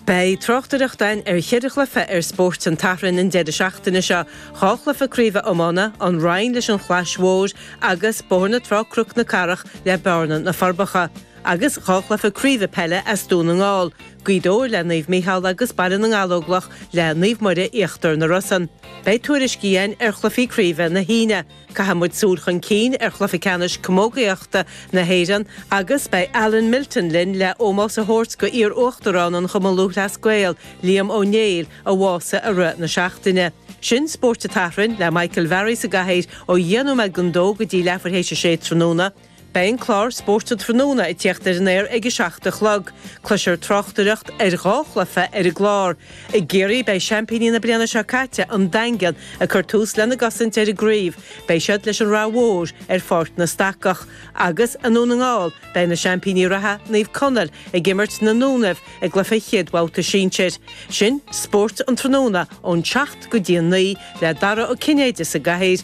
Beidh tráchtaireacht ann ar cheithre chluiche ar Spórt an tSathairn an deireadh seachtaine seo, dhá chluiche craoibhe iomána, An Rinn leis an Chlais Mhór agus Bóthar na Trá-Cnoc na Cathrach le Bearna-Na Forbacha, agus dhá chluiche craoibhe peile as Dún na nGall, Gaoth Dobhair le Naomh Micheál agus Baile na nGallóglach le Naomh Muire-Íochtar na Rosann. Beidh tuairiscí ann ar chluichí craoibhe na hAoine, Caithfidh muid súil chun cinn ar chluiche ceannais camógaíochta na hÉireann agus beidh Alan Milton linn le ómós a thabhairt go iar Uachtarán an Chumann Lúthchleas Gael, Liam Ó Néill, a bhásaigh i rith na seachtaine. Sin Spórt an tSathairn le Michael Varry sa gcathaoir ó dheich nóiméad gon dó go dtí leathuair théis a sé tráthnóna. Beidh an clár Spórt an Tráthnóna ag tíocht ar an aer ag a seacht a chlog. Cloisfear tráchtaireacht ar dhá chluiche ar an gclár. I gCiarraí beidh seaimpíní na bliana seo caite, An Daingean, ag cur tús lena gcosaint ar an gcraobh. Beidh siad leis an Ráth Mhór ar Pháirc na Stacach. Agus i nDún na nGall beidh na seaimpíní reatha, Naomh Conaill, ag imirt na nDúnaibh i gcluiche chéad bhabhta sinsir. Sin Spórt an Tráthnóna ón tseacht go dtí a naoi le Dara Ó Cinnéide sa gcathaoir,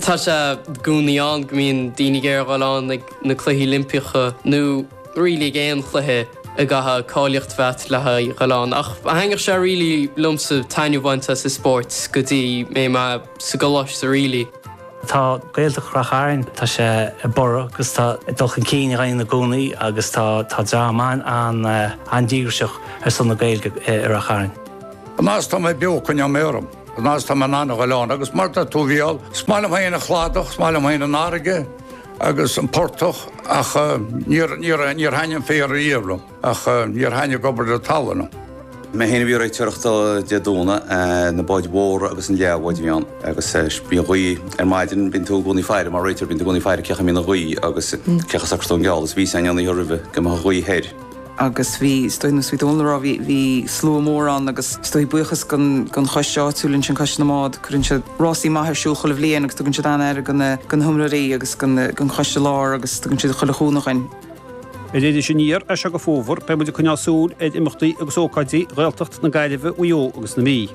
Tá sé i gcónaí ann go mbíonn daoine ag iarraidh a dhul ann ag na Cluichí Oilimpeacha nó really ag aon chluiche go gcaithfidh cáilíocht a bheith agat le haghaidh a dhul ann. Ach thaitnigh sé really liomsa taitneamh a bhaint as an spórt go dtí mé mé sa gcoláiste really. Tá Gaeltacht Ráth Chairn, tá sé ag borradh agus tá dul chun cinn á dhéanamh i gcónaí agus tá tá dream an-díograiseach ar son na Gaeilge i Ráth Chairn. An fhad is tá mé beo coinneoidh mé orm. An fhad is atá mé in ann a ghoil ann agus mar tá tú bhuel, is maith liom féin an chladach, is maith liom féin an fharraige agus an portach ach níor thaitnigh an féar riamh liom ach níor thaitnigh obair na talmhan liom. Mé féin a bhí ag réiteoireacht Dé Domhnaigh, na báid mhóra agus an leathbhád a bhí ann agus bíonn gaoth ar maidin, bíonn tú i gcónaí ag faire, mar réiteoir bíonn tú i gcónaí ag faire cén chaoi a mbíonn an ghaoth agus cén chaoi a socraíonn tú an geall agus bhí sé ann an oíche roimhe go mbeadh an ghaoth thoir. agus bhí, is dóigh, nós bhí Dónal a' rá, bhí, bhí slua mór ann agus is dóigh buíochas gon, gon choiste áitiúil ansin, Coiste na mBád, cuireann siad rásaí maith ar siúl chuile bhliain agus tugann siad an-aire go na, go na hiomróirí agus go na, gon choiste lár agus tugann siad chuile chúnamh dhuinn. Ar Iris Aniar as seo go Fómhar beidh muid ag coinneáil súil ar imeachtaí agus ócáidí Ghaeltacht na Gaillimhe, Mhaigh Eo agus na Mí.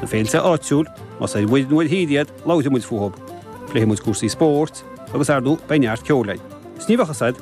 Na féilte áitiúil, más ar muir nó ar tír iad, labhróidh muid fúthu. Pléifidh muid cúrsaí spóirt agus, ar ndóigh, beidh neart ceoil againn. Is ní bheadh a fhios agat.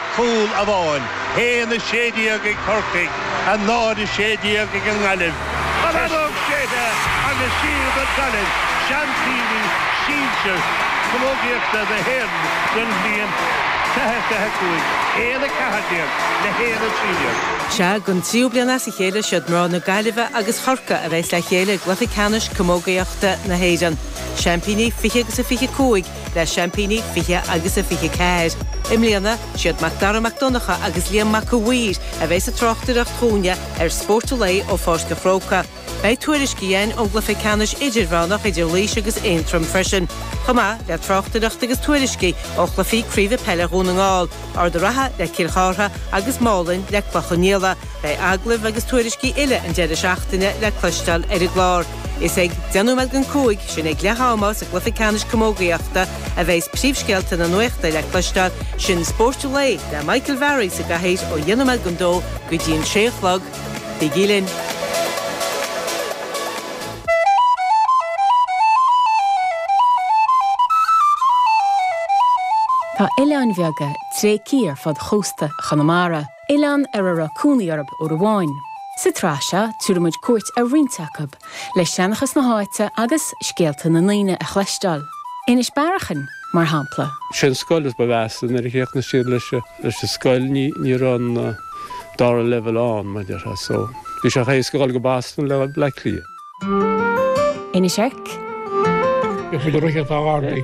cúl amháin, 1-16 ag Corcaigh, 0-16 ag an nGaillimh. An fheadóg shéidte agus siad Gaillimh, seaimpíní sinsir camógaíochta na hÉireann don bhliain 20 25, 1-14 le 1-13. Sea, don tríú bliain as a chéile, siad mná na Gaillimhe agus Chorcaí a bheas le chéile i gcluiche ceannais camógaíochta na hÉireann. Seaimpíní 20 25, le seaimpíní 20 agus a 24. I mbliana, siad Mac Dara Mac Donncha agus Liam Mac a' Mhaoir a bheidh sa tráchtaireacht dhúinne ar Spórt an Lae ó Pháirc a' Chrócaigh. Beidh tuairiscí againn ón gcluiche ceannais idirmheánach idir Laois agus Aontroim freisin, chomh maith le tráchtaireacht agus tuairiscí ó chluichí craoibhe peile Dhún na nGall, Ard a' Rátha le Cill Chartha agus Málainn le Cloich Cheann Fhaola. Beidh agallaimh agus tuairiscí uile an deireadh seachtaine le cloisteáil ar an gclár. Is ag 10 nóiméad don 5 sin ag leath ama sa gcluiche ceannais camógaíochta a bheas príomhscéalta na nuachta le cloisteáil, sin Spórt an Lae le Michael Varry sa gcathaoir ó 10 nóiméad don 2 go dtí an 6 a chlog. Bígí linn. Tá oileáin bheaga tréigthe ar fud chósta Chonamara. Oileáin ar a raibh cónaí orthu uair amháin. Sa tsraith seo tabharfaidh muid cuairt ar roinnt acu, le seanchas na háite agus scéalta na ndaoine a chloisteáil, Inis Bearachain mar shampla. Sé an scoil is ba mheasa nuair a chríochnaigh siad leis an scoil ní raibh an dara leibheal ann mar déarfá so bhí sé chomh éasca dhul go Boston le Bleá Cliath. Inis Oirc. Is i gCorcaigh atá a gharraí.